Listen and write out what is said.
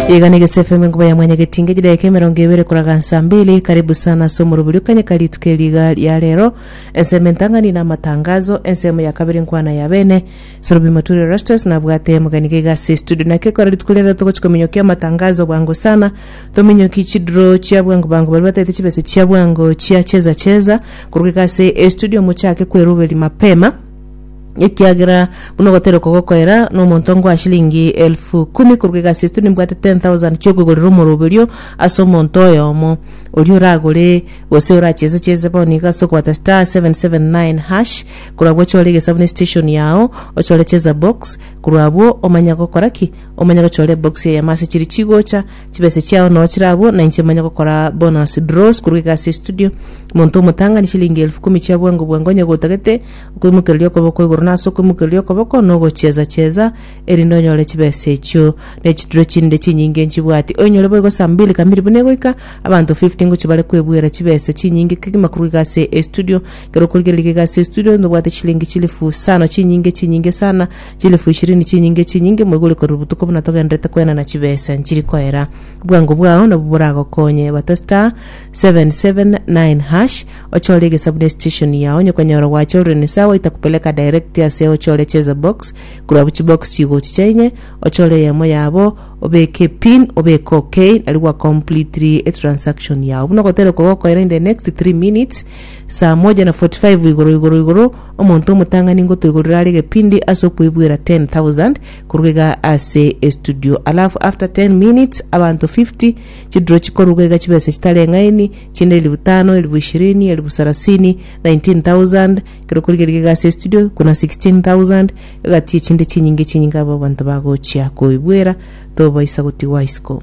Igana egese FM enkuba ya mwanya getinge chidaeka emerongo ebere koraga nsa mbili karibu sana ase omorobori okanyeka rituko eri iga ria rero ensemo entang'ani na amatangazo ensemo ya kabere nkwana ya bene sorobi moturi rastus nabwate mugani gaiga ase studio naki ekora rituko ria rero togochi kominyokia amatangazo bwango sana tominyoki chidro chia bwango bwango baria bataete chibese chia bwango chia cheza cheza koruga iga ase estudio mochake kweroberia mapema ekiagera buna ogotera okogokoera nomonto ngoa chilingi elfu kumi korwa egasi esto nimbwate 10,000 chiokogorera omorobe orio ase omonto oyomo oria oragore gose oracheze cheze bono iga ase okobata *779# korwa agwo ochore egesabu ne station yago ochore cheza box korwa abwo omanye gokora ki omanye gochora ebox eyemo ase chiri chigocha Chibesa chiao nao chire abwo, na inche manye gokora bonus draws korwa egasi ya studio. Monto omotang'ani shilingi elfu kumi chia bwango bwango onye gotagete, okoimokereria okoboko igoro na ase okoimokereria okoboko na ogocheza cheza, erinde onyore chibesa echio. Ne chitulo chinde chinyinge nchibwati, oinyore boigo saa mbili kamili buna egoika, abanto 50 ngochia bare kwebuera chibesa chinyinge kegima korwa egasi ya estudio. Ekero okorigereria egasi ya estudio, nobwate chilingi chilifu isano chinyinge chinyinge sana, Chilifu ishirini chinyinge chinyinge mwegure korwa botuko buna togenderete kwenana chibesa nchiri koera. Bwango bwao nabwo boragokonye. Bata star 779 hash ochore egesabu ne station yao onye okonyora gwachorire ni sawa itakupeleka direct ase ochore cheza box korwa abwo chibox chigochicha inye ochore eyemo yabo obeke epin obeke ok nario gwa completely etransaction yao buna ogotera okogokoera in the next 3 minutes Saa moja na forty five igoro igoro igoro, omonto omotang'ani ngotoigorere are egepindi ase okoibwera ten thousand koruga iga ase estudio alafu after ten minutes abanto fifty chiduro chikoruga iga chibesa chitari eng'aini chinde elifu tano elifu ishirini elifu sarasini nineteen thousand kero koriga riga iga ase estudio buna sixteen thousand egati echinde chinyinge chinyinge abwo abanto bagochia koibwera tobaisa gotigwa isiko.